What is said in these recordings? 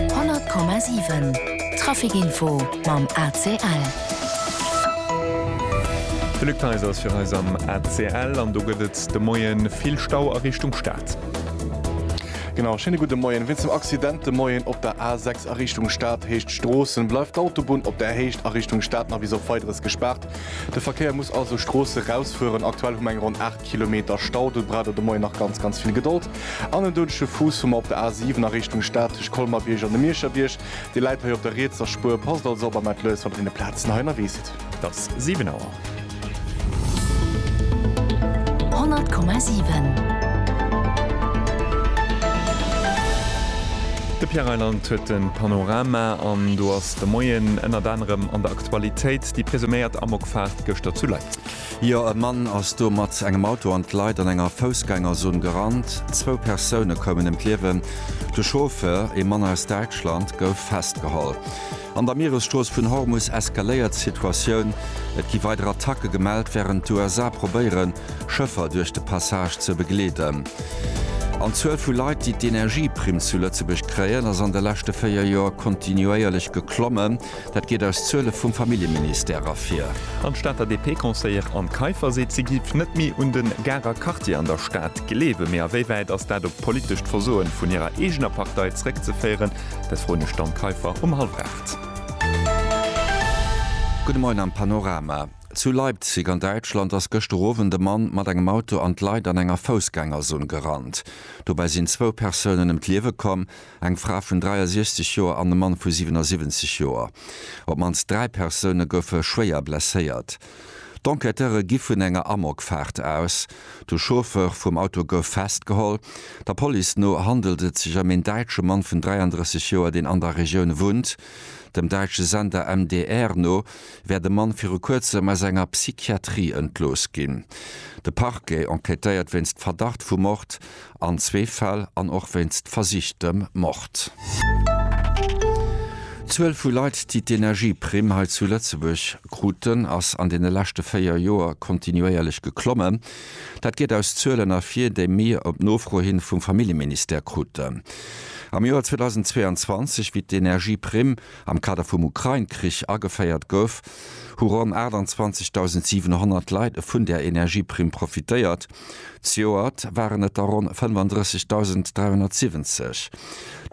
100,7 Traficinfo mam ACL. De Luc Theiser ass fir eis am ACL an do gëtt et de Moie vill Stau a Richtung Stad. Genau, schéine gudde Moien. Wéinst dem Accident de Moien op der A6 a Richtung Stad Héicht Stroossen, bleift d'Autobunn op där Héicht a Richtung Stad nach bis op Weideres gespaart. De Verkéier muss also Stroosse rausfueren. Aktuell hu mer eng ronn 8. Kilometer Stau, do braucht et de Moien nach ganz ganz vill Gedold. An en doudege Fuuss hu mer op der A7 a Richtung Stad tëscht Colmar-Bierg an dem Mierscher Bierg. Dir läit hei op der rietser Spuer. Passt also op a mellt lues, wann der deene Plazen hei ënnerwee sidd. Et ass 7 Auer. 100,7. De Pierre Reyland huet de Panorama an do ass de Moien ënnert anerem an der Aktualitéit déi presuméiert Amokfaart gëschter zu Leipzig. Jo, e Mann ass do mat engem Auto an d'Leit an enger Foussgängerzon gerannt. Zwou Persoune koumen ëm d'Liewen. De Chauffeur, e Mann aus Däitschland, gouf festgeholl. An der Mieresstrooss vun Hormus eskaléiert d'Situatioun. Et gi weider Attacke gemellt, wärend d'USA probéieren, Schëffer duerch de Passage ze begleeden. An d'Zuel vu Leit, déi d'Energieprimm zu Lëtzebuerg kréien, ass an de leschte véier Joer kontinuéierlech geklommen. Dat geet aus Zuele vum Familljeministère ervir. An d'Stater DP-Conseillere Anne Kaiffer seet, si géif net méi un de Garer Quartier an der Stad gleewen. Mee a wéi wäit ass dat op d'politescht Versoe vun hirer eegener Partei zréckzeféieren? Dat froen ech d'Anne Kaiffer um hallef aacht. Gudde Moien am Panorama. Zu Leipzig an Däitschland ass gëschter Owend e Mann mat engem Auto an d'Leit an enger Foussgängerzon gerannt. Dobäi sinn zwou Persounen ëm d'Liewe komm. eng Fra vun 63 Joer an e Mann vu 77 Joer. Op d'mannst dräi Persoune goufe schwéier blesséiert. D'Enquêteure gi vun enger Amokfaart aus. De Chauffeur vum Auto gouf festgeholl. Der Police no handelt et sech ëm een däitsche Mann vun 33 Joer, deen an der Regioun wunnt. Dem däitsche Sender MDR no wär de Mann viru kuerzem aus enger Psychiatrie entlooss ginn. De Parquet enquêtéiert wéinst Verdacht vu Mord an zwee Fäll an och wéinst versichtem Mord. D'Zuel vu Leit, déi d'Energieprimm hei zu Lëtzebuerg kruten, ass an deene leschte véier Joer kontinuéierlech geklommen. Dat geet aus Zuelen ervir, déi mir op Nofro hin vum Familljeministère kruten. Am Joer 2022, wéi d'Energieprimm am Kader vum Ukrain-Krich ageféiert gouf, hu ronn 28.700 Leit vun där Energieprimm profitéiert. Zejoert waren et der ronn 35.370.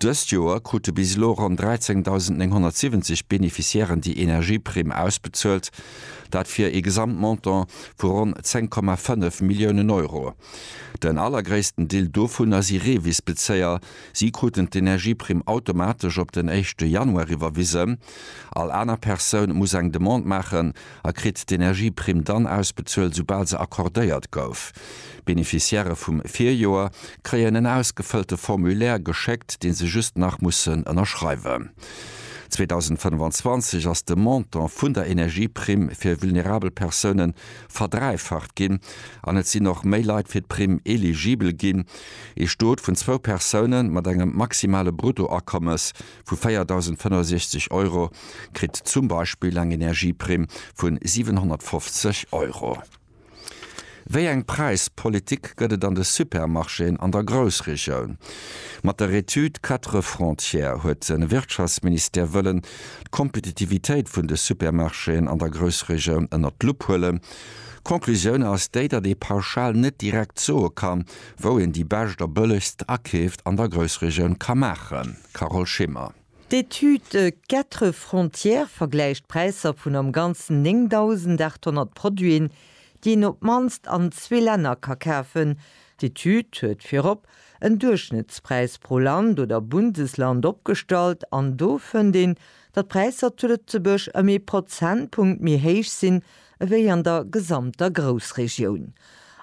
Dëst Joer krute bis elo ronn 13.970 Beneficiairen déi Energieprimm ausbezuelt, dat fir ee Gesamtmontant vu ronn 10,5 Milliounen Euro. Den allergréissten Deel dovunner si Revisbezéier. Si kruten d'Energieprimm automatesch op den éischte Januar iwwerwisen. All aner Persoun muss eng Demande maachen. a kritt d'Energieprimm dann ausbezuelt, soubal se accordéiert gouf. D'Beneficiairë vum Virjoer kréien en ausgefëllte Formulaire geschéckt, dee se just nach mussen ënnerschreiwen. 2025 ass de Montant vun der Energieprimm fir vulnerabel Persoune verdräifacht ginn an et sinn och méi Leit fir d'Primm eligibel ginn. Ee Stot vun zwou Persoune mat engem maximale Bruttoakommes vu 4.065 Euro kritt zum Beispill eng Energieprimm vu 750 Euro. Wéi eng Präispolitik gëtt et an de Supermarchéen an der Groussregioun? Mat der Etüd Quatre frontières huet de Wirtschaftsministère wëllen d'Kompetitivitéit vun de Supermarchéen an der Groussregioun ënner d'Lupp huelen. D'Conclusioun ass déi, datt ee pauschal net direkt soe kann, wou een déi bescht a bëllegst Akeeft an der Groussregioun ka maachen. Carole Schimmer. D'Etüd Quatre Frontières vergläicht d'Präisser vun am Ganzen 9.800 Produiten, déi een op d'mannst an zwee Länner ka kafen. D'Etüd huet virop en Duerchschnëttspräis pro Land oder Bundesland opgestallt an do fënnt een, datt d'Präisser zu Lëtzebuerg ëm ee Prozentpunkt méi héich sinn ewéi an der gesamter Groussregioun.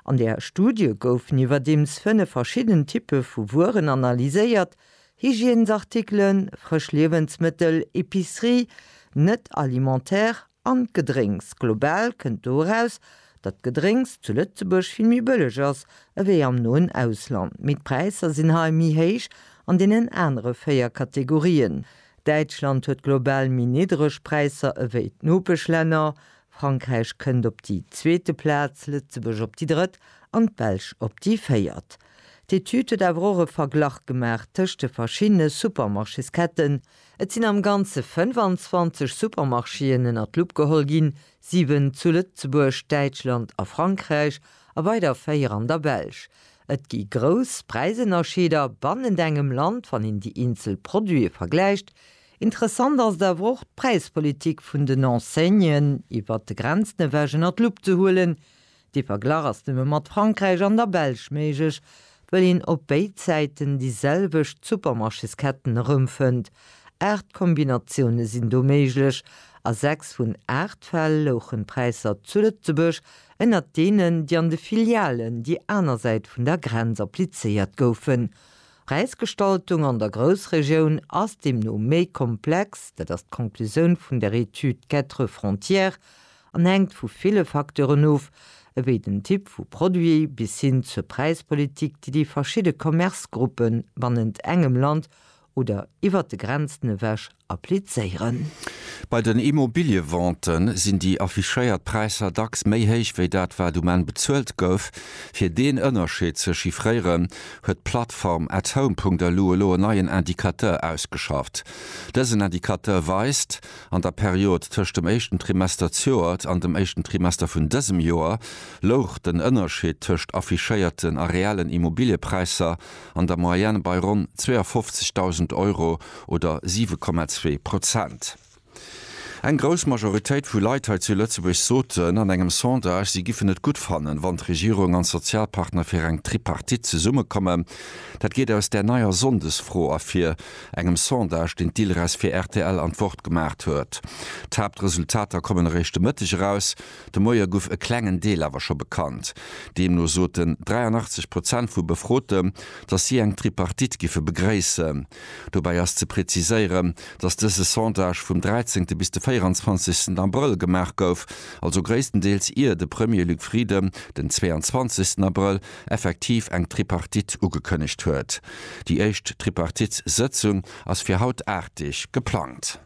An der Studie goufen iwwerdeems fënnef verschidden Typpe vu Wueren analyséiert. Hygiènesartikelen, frësch Liewensmëttel, Epicerie, net alimentaire an d'Gedrénks. Global kënnt do eraus, datt d'Gedrénks zu Lëtzebuerg vill méi bëlleg ass ewéi am noen Ausland. Mee d'Präisser sinn hei méi héich an deenen anere véier Kategorien. Däitschland huet global méi niddreg Präisser ewéi d'Nopeschlänner. Frankräich kënnt op déi zweete Plaz, Lëtzebuerg op déi drëtt an d'Belsch op déi véiert. D'Etüd huet awer och e Verglach gemaach tëscht de verschiddene Supermarchésketten. Et sinn am Ganze 25 Supermarchéen ënner d'Lupp geholl ginn, siwen zu Lëtzebuerg, Däitschland a Frankräich a weider véier an der Belsch. Et gi grouss Präisënnerscheeder bannent engem Land, wann een déi eenzel Produite vergläicht. Interessant ass et awer och, d'Präispolitik vun den Enseignen iwwert de Grenzen ewech ënner d'Lupp ze huelen. De Verglach ass nëmme mat Frankräich an der Belsch méiglech, wëll een op béid Säiten déi selwecht Supermarchésketten erëmfënnt. Aacht Kombinatioune sinn do méiglech. A sechs vun aacht Fäll louchen d'Präisser zu Lëtzebuerg ënnert deenen, déi an de Filialen déi aner Säit vun der Grenz applizéiert goufen. D'Präisgestaltung an der Groussregioun ass deemno méi komplex, dat ass d'Conclusioun vun der Etüd Quatre Frontières, an hänkt vu ville Facteuren of, ewéi den Typ vu Produit bis hin zur Präispolitik, déi déi verschidde Commercegruppe bannent engem Land oder iwwert de Grenzen ewech applizéieren. Bei den Immobiliëvente sinn déi affichéiert Präisser dacks méi héich ewéi dat, wat um Enn bezuelt gouf. Fir deen Ënnerscheed ze chiffréieren, huet d'Plattform At Home. Elu elo en neien Indicateur ausgeschafft. Dësen Indicateur weist, An der Period tëscht dem éischten Trimester d'zjoert an dem éischten Trimester vun dësem Joer louch den Ënnerscheed tëscht affichéierten a reellen Immobiliëpräisser an der Moyenne bei ronn 52.000 Euro oder 7,2 Prozent. Eng grouss Majoritéit vu Leit hei zu Lëtzebuerg soten an engem Sondage, si giffen et gutt fannen, wann d'Regierung an d'Sozialpartner fir eng Tripartite zesummekommen. Dat geet aus där neier Sonndesfro ervir. engem Sondage, deen d'ILRES fir rtl an d'Wort gemaacht huet. D'Haaptresultater kommen eréischt de Mëtteg eraus. De Moie guff e klengen Deel awer scho bekannt. Deemno soten 83 Prozent vu Befrote, datt si eng Tripartite giffe begréissen. Dobäi ass ze preziséieren, datt dëse Sondage vum 13. bis de 24. Abrëll gemaach gouf, also gréisstendeels ier de Premier Luc Frieden den 22. Abrëll effektiv eng Tripartite ugekënnegt huet. Déi éischt Tripartitssëtzung ass fir haut Aartdeg geplangt.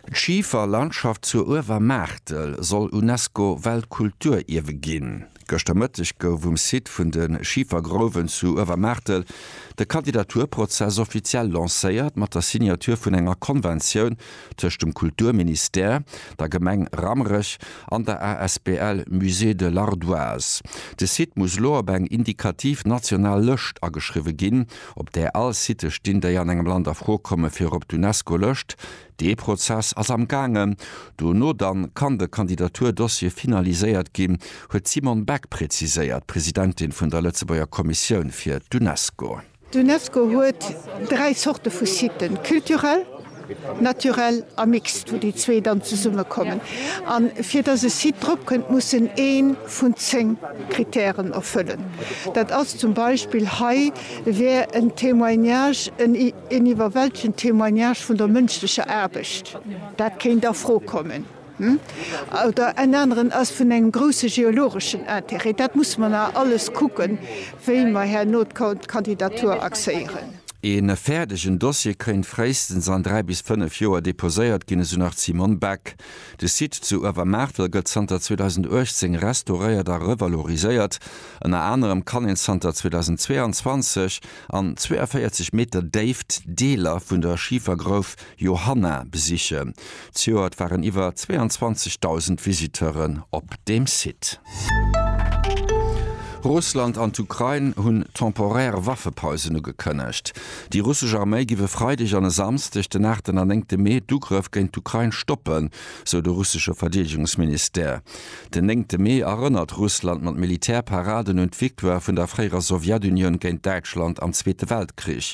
D'Schiferlandschaft zur Uewermaartel soll UNESCO-Weltkulturierwe ginn. Gëschter Mëtteg gouf um Site vun de Schifergrouwen zu Uewermaartel de Kandidaturprozess offiziell lancéiert mat der Signature vun enger Konventioun tëscht dem Kulturministère, der Gemeng Rammerech an der asbl Musée de l'Ardoise. De Site muss elo op eng indikativ national Lëscht ageschriwwe ginn, op där all Sitë stinn, déi an engem Land a Fro komme fir op d'UNESCO-Lëscht. Dee Prozess ass am gaangen. Dono dann kann de Kandidaturdossier finaliséiert ginn, huet d'Simone Beck preziséiert, Presidentin vun der Lëtzebuerger Kommissioun fir d'UNESCO. D'Unesco huet dräi Zorte vu Siten, culturel, naturel a mixt, wou déi zwee dann zesummekommen. A fir datt e Site drop kënnt, muss en ee vun zéng Krittären erfëllen. Dat ass zum Beispill, hei wär en Témoignage, en iwwerwältegend Témoignage vun der mënschlecher Aarbecht, dat kéint a Fro kommen. oder en aneren ass vun engem grousse geologeschen Intérêt. Dat musse mer nach alles kucken, wéi mer herno d'Kandidatur axéieren. E fäerdegen Dossier kéint fréistens an dräi bis fënnef Joer deposéiert ginn, esou nach d'Simone Beck. De Site zu Uewermaartel gëtt zanter 2018 restauréiert a revaloriséiert. Ënner anerem kann een zanter 2022 an 42 Meter Déift Deeler vun der Schifergrouf Johanna besichen. Zejoert waren iwwer 22.000 Visiteuren op dem Site. Russland an d'Ukrain hunn temporär Waffepausen ugekënnegt. Déi russesch Arméi giff e Freideg an e Samsdeg, den aachten an néngte Mee, d'Ugrëff géint d'Ukrain stoppen, sou de russesche Verdeedegungsministère. Den néngte Mee erënnert Russland mat Militärparaden un d'Victoire vun der fréierer Sowjetunioun géint Däitschland am Zweete Weltkrich.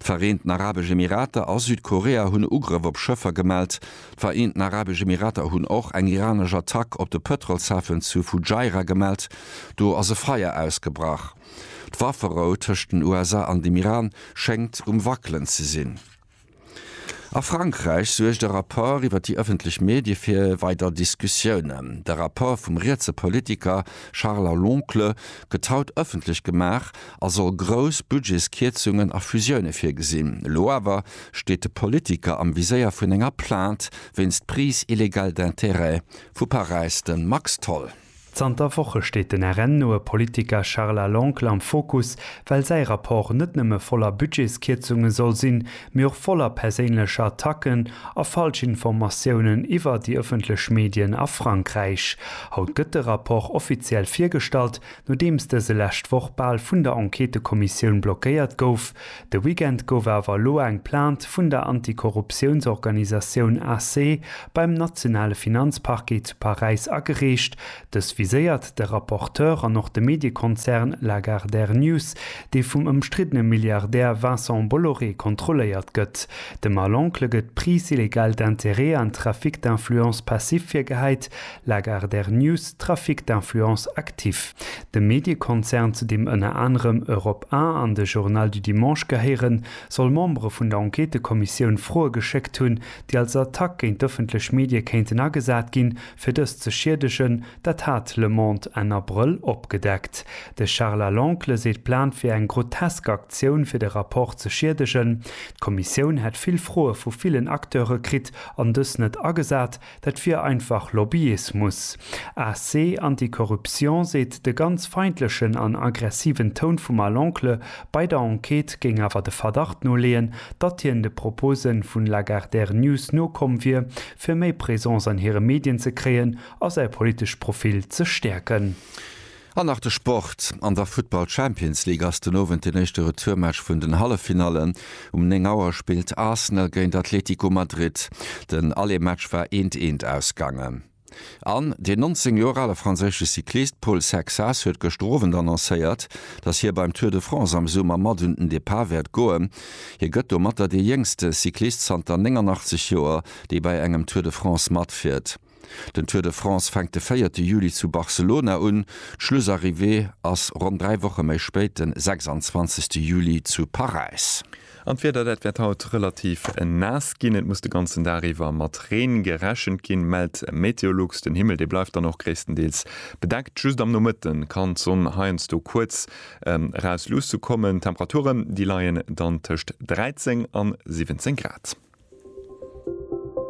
D'Vereenten Arabesch Emirater a Südkorea hunn e Ugrëff op Schëffer gemellt. D'Vereenten Arabesch Emirater hunn och eng iranesch Attack op de Pëtrolshafen zu Fujairah gemellt. Do ass e Feier ausgebrach. D'Wafferou tëscht den USA an dem Iran schéngt um wackelen ze sinn. A Frankräich suergt e Rapport iwwer déi ëffentlech Medie fir weider Diskussiounen. De Rapport vum rietse Politiker Charles Loncle gëtt haut ëffentlech gemaach a soll grouss Budgetskierzungen a Fusioune virgesinn. Elo awer steet de Politiker am Viséier vun enger Plainte wéinst Prise illégale d'intérêts vu Paräis, de Max Tholl. Zanter Woche steet den RN-noe Politiker Charles Aloncle am Fokus, well säi Rapport net nëmme voller Budgetskierzunge soll sinn, mee och voller perséinlecher Attacken a Falschinformatiounen iwwer déi ëffentlech Medien a Frankräich. Haut gëtt de Rapport offiziell virgestallt, Nodeems dëse lescht Woch bal vun der Enquêtekommissioun blockéiert gouf, de Weekend gouf awer elo eng Plainte vun der Antikorruptiounsorganisatioun ACSE beim nationale Finanzparquet zu Paräis agereecht. Dës viséiert de Rapporteur an och de Mediekonzern Lagardère News, dee vum ëmstriddene Milliardär Vincent Bolloré kontrolléiert gëtt. Dem Mal-Oncle gëtt Prise illégale d'intérêts an Trafic d'influences passives virgehäit, Lagardère News, Trafic d'influence actif. Dem Mediekonzern, zu deem ënner anerem Europe 1 an de Journal du Dimanche gehéieren, soll Membere vun der Enquêtëkommissioun Froe geschéckt hunn, déi als Attack géint d'ëffentlech Medie kéinten agesat ginn, fir dës ze schiedegen. Dat hat Le Monde Enn Abrëll opgedeckt. De Charles à l'Oncle seet, d'Plan wier eng grotesk Aktioun, fir de Rapport ze schiedegen. D'Kommissioun hätt vill Froe vu villen Acteure kritt an dës net agesat. Dat wier einfach Lobbyismus. AC Anticorruption seet, de ganz feindlechen an aggressiven Toun vum Al Oncle bei der Enquête géing awer de Verdacht noleeën, datt hien de Propose vun Lagardère News nokomm wier, fir méi Présence an hire Medien ze kréien a säi politescht Profil ze stäerken. An nach de Sport, An der Futtball Champions League ass den Owend den éischte Retourmatch vun den Halleffinallen. Um 9 Auer spillt Arsenal géint Atletico Madrid. Den Alleematch war eent eent ausgaangen. An den 19 Joer ale franséische Cyclist Paul Sexas huet gëschter Owend annoncéiert, datt hie beim Tour de France am Summer mat un den Depart wäert goen. Hie gëtt domatter dee jéngste Cyclist zanter 89 Joer, dee bei engem Tour de France matfiert. Den Tour de France fänkt de véierte Juli zu Barcelona un. D'Schlussarrivée ass ronn dräi Woche méi spéit, de 26 Juli zu Paräis. An d'Wieder, dat wäert haut relativ naass ginn. Et muss de ganzen Dag iwwer mat Reen gerechent ginn, mellt Meteolux. Den Himmel, dee bleift dann och gréisstendeels bedeckt. Just am Nomëtte kann d'Sonn heiansdo kuerz eraus luussekommen. D'Temperaturen, déi leien dann tëscht 13 a 17 Grad.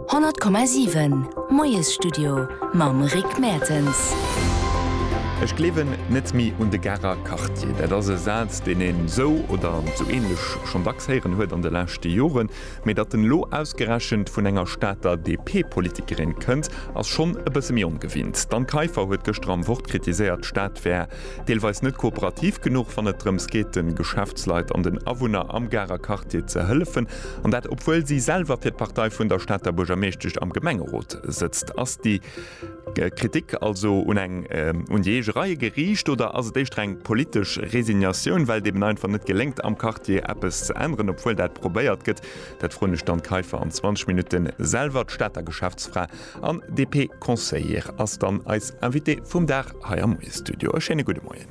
100,7 Moiesstudio mam Rick Mertens. Ech gleewen net méi un de Garer Quartier. Dat ass e Saz, deen een esou oder esou ähnlech schonn dacks héieren huet an de leschte Joren. Mee datt en elo ausgerechent vun enger Stater DP-Politikerin kënnt, ass schonn e bësse méi ongewinnt. D'Anne Kaiffer huet gëschter am Wort kritiséiert, d'Stad wär deelweis net kooperativ genuch, wann et drëms geet, de Geschäftsleit an den Awunner am Garer Quartier ze hëllefen. An dat obwuel si selwer fir d'Partei vun der Stater Buergermeeschtesch am Gemengerot sëtzt. Ass déi Kritik also un eng un déi eege Reie geriicht oder ass et éischter eng politesch Resignatioun, well et eben einfach net geléngt am Quartier eppes ze änneren, obwuel dat probéiert gëtt? Dat froen ech d'Anne Kaiffer an 20 Minutten selwer. D'Stater Geschäftsfra an DP-Conseillère ass dann eis Invitée vum Dag hei am Moiesstudio. E schéine gudde Moien.